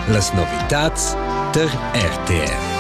Las novitads tar RTR.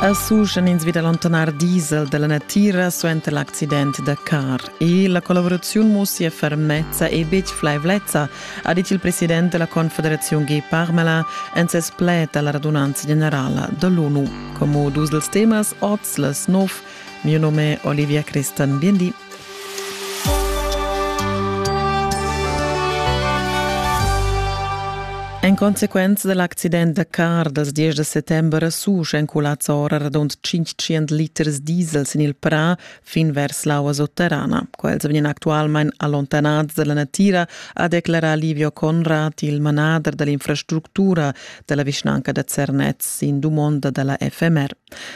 A Suschen ins vid allontanar diesel dalla natira suenter l'accident da car e la collaboraziun mussia fermezza e betg flaivlezza, ha dit il president della Confederazione G Parmela en ses pled alla radunanza generala dell'ONU. Como dus dels temas oz les nov. Mio nome è Olivia Cristan. Bien di. En consequenza dal accident da car dals 10 da settember a Susch èn culads ora radund 500 liters diesel sin il prà fin vers l'aua sotterrana. Quels vegnan actualmain allontanads da la natira, ha declarà Livio Conrad, il manader da l'infrastructura da la vischnanca da Zernez sin dumonda da la FMR.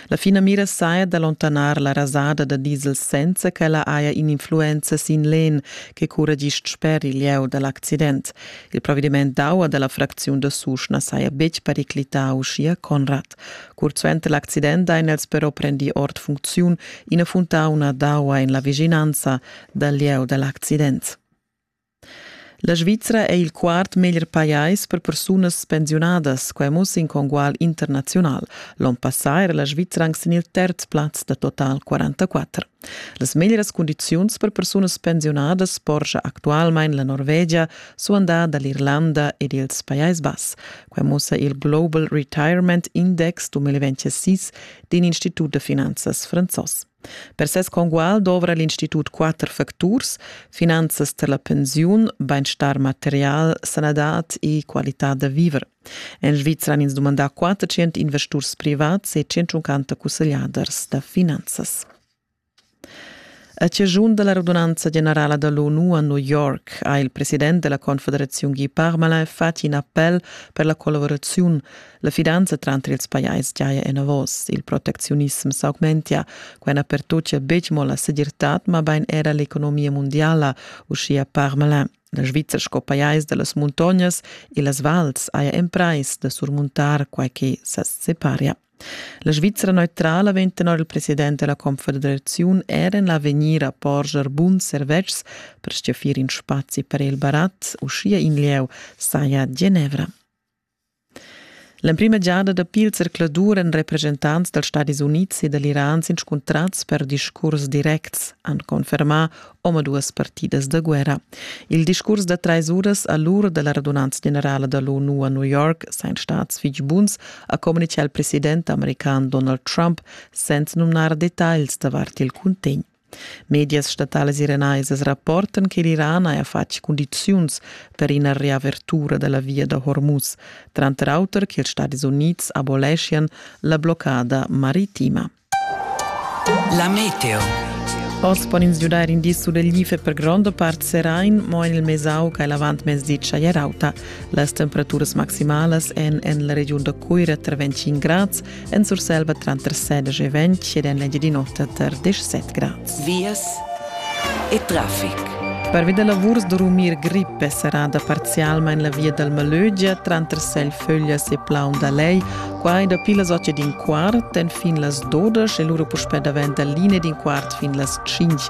La finamira saja d'allontanar la rasada da diesel senza ch'ella haja in'influenza sin l'en che curra gist sper il lieu da l'accident. Il provediment d'aua da la fracziun da Susch na saja betg periclità, uschia Conrad. Curt suenter l'accident hain els però prendì ord funcziun ina funtauna d'aua en la vischinanza dal lieu da l'accident. La Svizra è il quart meglier pajais per persunas pensiunadas. Quai mussa in congual internaziunal. L'onn passà era la Svizra anc sin il terz plaz da total 44. Las meglieras cundiziuns per persunas pensiunadas porscha actualmain la Norvegia suandà da l'Irlanda ed ils Pajais Bass. Quai mussa il Global Retirement Index 2026 d'in institut da finanzas franzos. Per ses congual dovra l'institut quatter facturs, finanzas per la pensiun, bainstar material, sanadad e qualitad da viver. En Svizra han ins dumandà 400 investurs privats e 150 cussegliaders da finanzas. A ciascun della radunanza generala dell'ONU a New York ha il president della Confederazione Guy Parmelin fatg in appel per la collaborazione La fidanza tranter ils pajais giaja enavos, il protecziunism s'augmentia, quai na pertochia betg mo la segirtad, mabain era l'economia mundiala, uschia Parmelin. La Svizzera sco pajais da las muntognas e las vals haja emprais da surmuntar quai che sa separia. La Svizzera neutrala vegn tenor il president della Confederaziun er en l'avegnir a porscher buns servetschs per stgaffir in spazi per il barat, uschia in lieu saja Genevra. L'emprima giada dapi il zercladur èn represchentants dals Stadis Unids e da l'Iran s'inscuntrads per discurs directs, han confermà omaduas partidas da guerra. Il discurs da trais uras a l'ur da la radunanza generala da l'ONU a New York sain stads fitg buns, ha communitgà il president american Donald Trump, senza numnar detagls davart il cuntegn. Medias statalas iranaisas rapportan che l'Iran haja fatg cundiziuns per ina riavertura da la via da Hormuz, tranter auter che ils Stadis Unids aboleschian la bloccada maritima. La meteo. Oz pon ins giudair indis sur il Life per gronda part serain, mo en il Mesau che l'avantmezdi chagliarauta. Las temperaturas maximalas èn en la regiun da Cuira tra 25 grads en Surselva tranter 16 e 20 ed en l'Engiadin'Ota tar 17 grads. Vias e traffic. Pervi da lavurs durmir grippe serrada parzialmain la via dal Malögia tranter Selföglias e Plaun da Lei, quai dapi las 8 d'in quart enfin las 12 e lura puspè davent da linea d'in quart fin las 5.